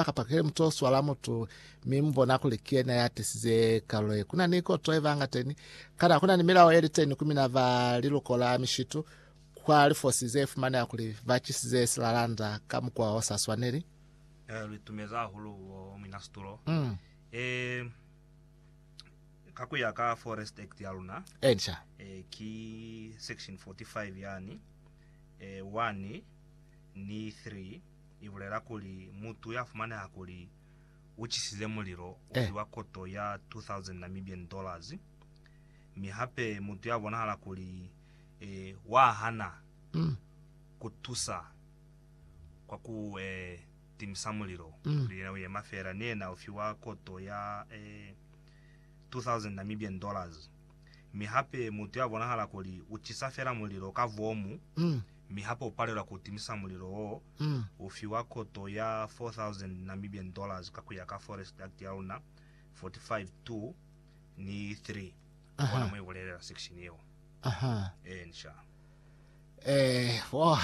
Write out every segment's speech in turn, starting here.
ba ka pakele mutu o swala mutu mi mu bona kuli ki yena ya tisize kalulo ye. Ku na ni koto ye ba ngateni, kana ku na ni milao ye li teni ku mina ba liluko la mishitu kwa lifosi ze fumaneha kuli ba cisize silalanda ka mukwa o sa swaneli? Eh, lu itumeza hahulu bo mwina situlo. Mm. Eh, ka ku ya ka Forest Act ya luna, Enca. eh, ki section 45 yani, eh, 1 ni 3 i bulela kuli mutu ya fumaneha kuli u cisize mulilo u fiwa koto ya 2,000 Namibian dollars, mi hape mutu ya bonahala kuli wa hana ku tusa kwa ku timisa mulilo kuli yena u yema feela, ni yena u fiwa koto ya 2,000 Namibian dollars, mi hape mutu ya bonahala kuli u cisa feela mulilo ka vomu. mi hape u palelwa ku timisa mulilo wo, u fiwa koto ya 4,000 Namibian dollars ka ku ya ka Forest Act ya luna 45 2 ni 3. U bona mo i bulelela section yeo? Ee, nxa. Eh, oh.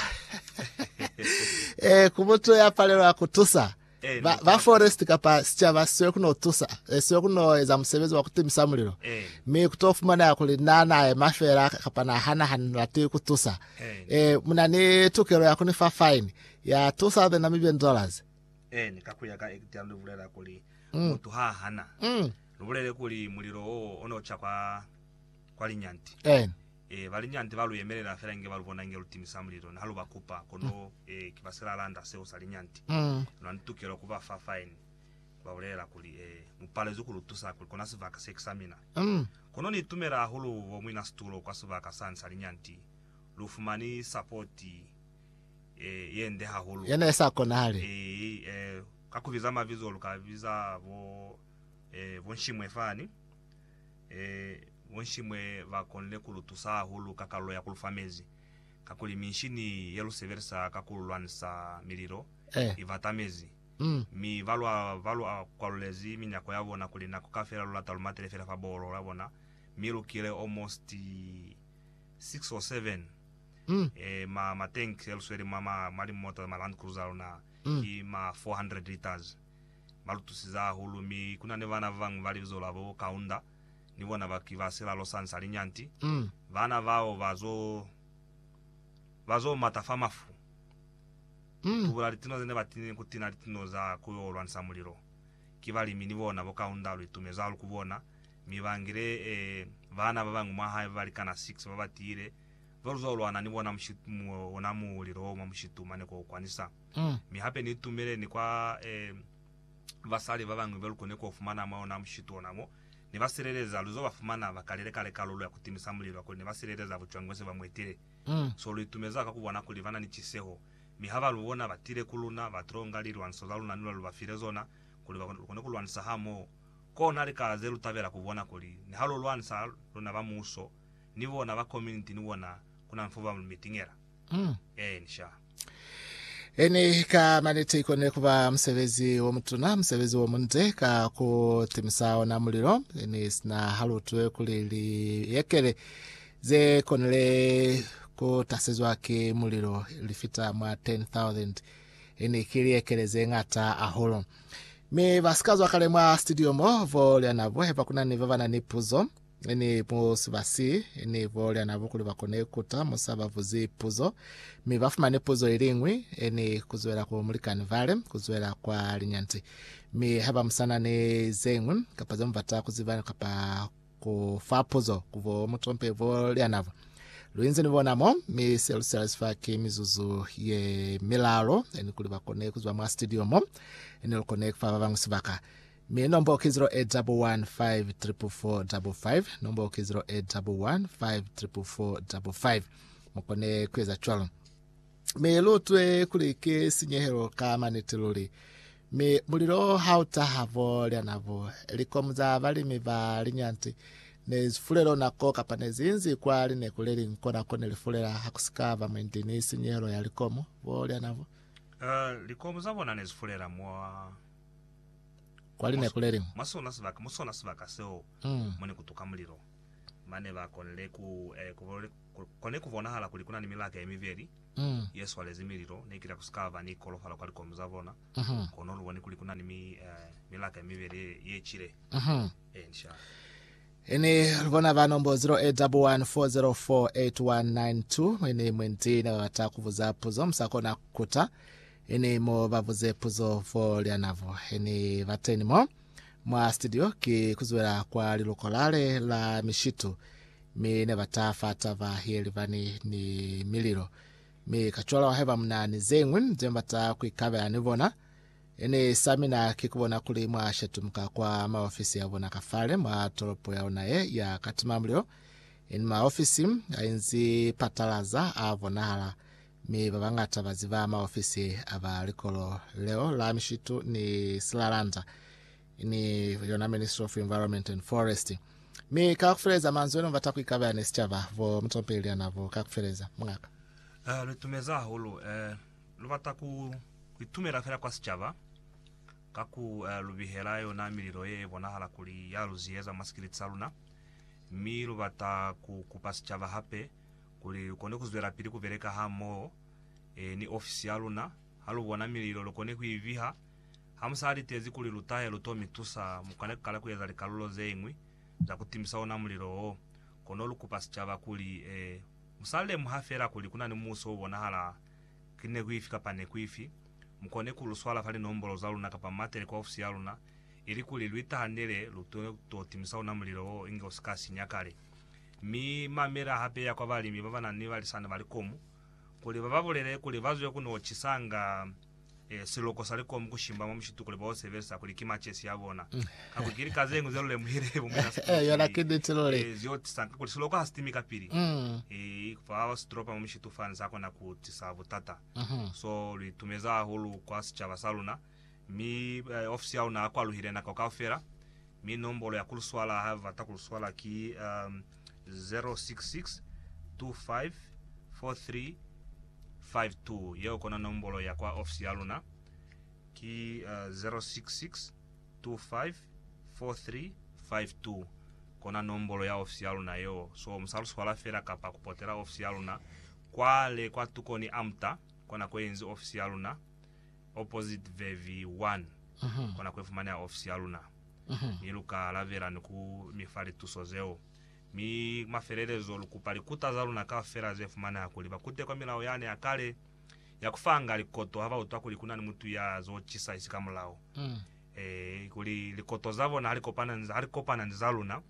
eh, ku mutu ya palelwa ku tusa. Ba, ba forest kapa sicaba seo kuno tusa, eh, seo kuno eza musebezi wa kutimisa mulilo. Mi kuto fumanela kuli na na ema fela kapa na hana hani lati kutusa. Eh, muna ni tukelo ya kuni fa fine ya 2,000 Namibian dollars. Eni, ka kuya ka Act ya lubulela kuli mm. mutu ha hana mm. lubulele kuli mulilo oo ono cha kwa kwa linyanti eni Ee, ba linyande ba lu yemelela fela inge ba lu bona inge lu timisa mulilo ni ha lu ba kupa, kono ee, ki ba silalanda seo sa linyande. Luna ni tukelo ku ba fa faini, ku ba bulelela kuli, Ee, mu palezwi ku lu tusa kuli kona sibaka se ki sa mina. Kono ni itumela hahulu bo muinasitulo kwa sibaka sani sa linyande. Lu fumani sapoti ee, ye nde hahulu. Ye ne i sa konahali. Ee, ee, ka ku biza mabizo, lu ka biza bo ee, bo Nshimwe fani. Ee, bonshimwe ba konile ku lu tusa hahulu ka kalulo ya ku lu fa mezi, kakuli minshini ye lu sebelisa ka ku lwanisa mililo i bata mezi. Mi balwa ba lu kwalulezi minyako ya bona kuli nako kaufela lu lata lu matele fela fa boholo ya bona, mi lu kile almost six or seven ma, ma tank ye lu sweli mwa ma, mwa limota, ma Land Cruiser a luna, ki ma four hundred litres. ba lutusize hahulu, mi ku na ni bana ba bañwi ba libizo la bo Kaunda, ni bona ba ki ba silalo sa nsa linyanti. Bana bao ba zo, ba zo mata fa mafu, ku tubula litino ze ne ba tinile ni ku tina litino za ku yo lwanisa mulilo. Ki balimi ni bona bo Kaunda, lu itumezi hahulu ku bona, mi ba ngile bana ba bañwi mwa hae ba balikana 6 ba ba tiile, ze lu zo lwana ni bona mushitu, ona mulilo wo mwa mushitu mane ko u kwanisa. Mi hape ni tumeleni kwa basali babañwi ba lu koni ku fumana mwa ona mushitu ona mo Ni ba sileleza. Lu zo ba fumana ba kalile kale kalulo ya ku timisa mulilo kakuli ne ba sileleza bucwango ze ba mu etile. So lu itumeza ka ku bona kuli ba na ni ciseho. Mi ha ba lu bona ba tile ku luna, ba tilo nga lilwanso za luna ni lwa lu ba file zona, kuli ba kone ku lwanisa hamoho. Kona lika ze lu tabela ku bona kuli niha lu lwanisa, luna ba muso, ni bona ba kominiti ni bona, ku na nfo ba lu mitingela. Mm. Ee, ni sha. Eni ka maniti ikone kuba musebezi wo mutuna, musebezi wo munde ka ku timisa ona mulilo, eni sina halutwe kuli liyekele ze konile ku tasezwa ki mulilo li fita mwa 10,000, eni ki liyekele ze ngata ahulu. Mi ba sikazwa kale mwa studio mo, vo lyanabo, heba kuna ni babana ni puzo. Ni mu sibasi ni bo Liana Bukulu ba kone kuta mu sa ba buzi puzo, mi ba fumane puzo iliñwi, ni kuzwela ku mulikani vale, kuzwela kwa linyanti. Mi haba musana ni zeñwi, kapa ze mubata kuziba kapa ku fa puzo, ku bo mutompe bo Liana bo. Lu inzi ni bona mo, mi se lu sela sifa ki mizuzu ye milalo, ni kuli ba kone kuzwa mwa studio mo, ni lu kone kufa ba bañwi sibaka. Mi nombo ki 0815445555, nombo ki 08154455. Mu kone ku eza cwalo. Mi lu utwe kuli ki sinyehelo ka maniti luli. Mi mulilo ha u taha bo lya nabo, likomu za balimi ba linyanti ne zi fulelo nako kapa ne zi inzi kwa lineku le liñwi kona ko ne li fulela ha ku si ka ba mwendi ni sinyehelo ya likomu bo lya nabo. Ee, likomu za bona ne zi fulela mwa. Kwa linako le liñwi. Mwa sona sibaka, mu sona sibaka seo mo ne ku tuka mulilo, mane ba konile ku, eh, ku, ku kone ku bonahala kuli kuna ni milaka ye mibeli ye swalezi mililo. Ne kila ku si ka ba ni kolofalo kwa likomu za bona, kono lu boni kuli kuna ni mi, eh, milaka ye mibeli ye, ye cile. Eya, ni sha. Ini lu bona ba nombo 0814048192 mwe ni mwe nti ne ba bata ku buza puzo mu sa kona ku kuta. Heni mu ba buze puzo fo lyanavo. Heni ba teni mo mwa studio ki kuzwela kwa lilokolale la mishitu, mi ne ba ta fa taba ye libani ni mililo. Mi kacwalo haiba muna ni zeñwi ze mba ta ku ikabela ni bona, heni sa mina ki kubona kuli mwa shetumuka kwa maofisi a bona ka fale mwa tolopo ya luna ye ya katimamulilo. Heni maofisi a inzi patalaza a bonahala, Mi ba bañata ba ziba maofisi a ba likolo leo la mishitu ni silalanda, ni yona Ministry of Environment and Forest. Mi ka kufeleza manzwi enu bata kuikabela ni sicaba, bo mutompeli Liana bo ka kufeleza. Mungaka. Eh, lu itumeza hahulu. Eh, lu bata ku, ku itumela fela kwa sicaba, ka ku eh, lu bihela yona mililo ye bonahala kuli ya lu ziyeza mwa sikiliti sa luna. Mi lu bata ku kupa sicaba hape, Kuli lukone kuzwelapili kubeleka hamoho ni ofisi yaluna, halubona mililo lukone kuiviha. Hamusa litezi kuli lutahe luto mitusa, mukone kukala kueza likalulo zeñwi za kutimisa ona mulilo wo. Kono lukupa sicaba kuli, Musa lemuha feela kuli kuna ni muuso obonahala ki neku ifi kapa neku ifi, mukone kuluswala fa linombolo zaluna kapa muatele kwa ofisi yaluna, ilikuli luitahanele luto timisa ona mulilo wo inge usika sinya kale. Mi mamela hape ya kwa balimi ba ba na ni balisana ba likomu, kuli ba ba bulele kuli ba zwe ku no cisanga siloko sa likomu ku shimba mwa mushitu kuli ba yo sebelisa kuli ki macesi a bona. Kakuli ki lika ze ñwi ze lu lemuhile bo mwina sitilopa mi ze yo tisa kakuli siloko ha si timi kapili. Fa sitilopa mwa mushitu fani sa kona ku tisa butata. So lu itumeza hahulu kwa sicaba sa luna. Mi ofisi ya luna kwaluhile nako kaufela, mi nombolo ya kuluswala ha bata kuluswala ki 066254352. Yeo kona nombolo ya kwa ofisi ya luna, ki 066254352. Kona nombolo ya ofisi ya luna yeo. So mu sa luswala fela kapa ku potela ofisi ya luna kwale kwa tukoni amta kona ko yenzi ofisi ya luna. Opposite Verb 1, Kona kuifumaneha ofisi yaluna, mi luka alabela ni ku mi fa lituso zeo. Mi mafelelezo, lukupa likuta zaluna kaufela zefumaneha kuli bakute kwa milao yane ya kale ya kufanga likoto haba utwa kuli kunani mutu ya zo cisa isi ka mulao. Ee, kuli likoto zabona halikopana ni zaluna,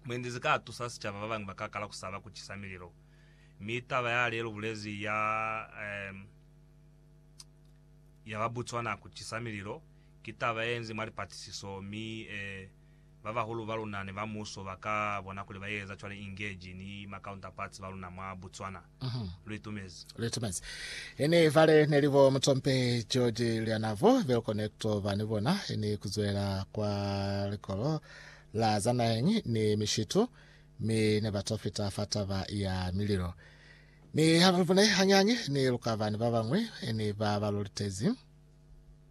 mwendi zika tusa sicaba. Babañwi baka kala kusaba kucisa mililo. Mi taba yale lubulezi ya. ya ba Botswana ku cisa mililo ki taba ye nzi mwa lipatisiso, mi e ba bahulu ba luna ni ba muso ba ka bona kuli ba ye eza cwale inge ji ni ma counterparts ba luna mwa Botswana. Lu itumezi. Lu itumezi. Ini vale ne li bo Mutompe George Lyanavo bel kone ku to ba ni bona ini ku zwela kwa likolo la za naheñi ni mishitu, mi ne ba to fita fa taba ya mililo. Mi haba ni bone hañañi ni lukabani babañwi ni ba ba lu litezi.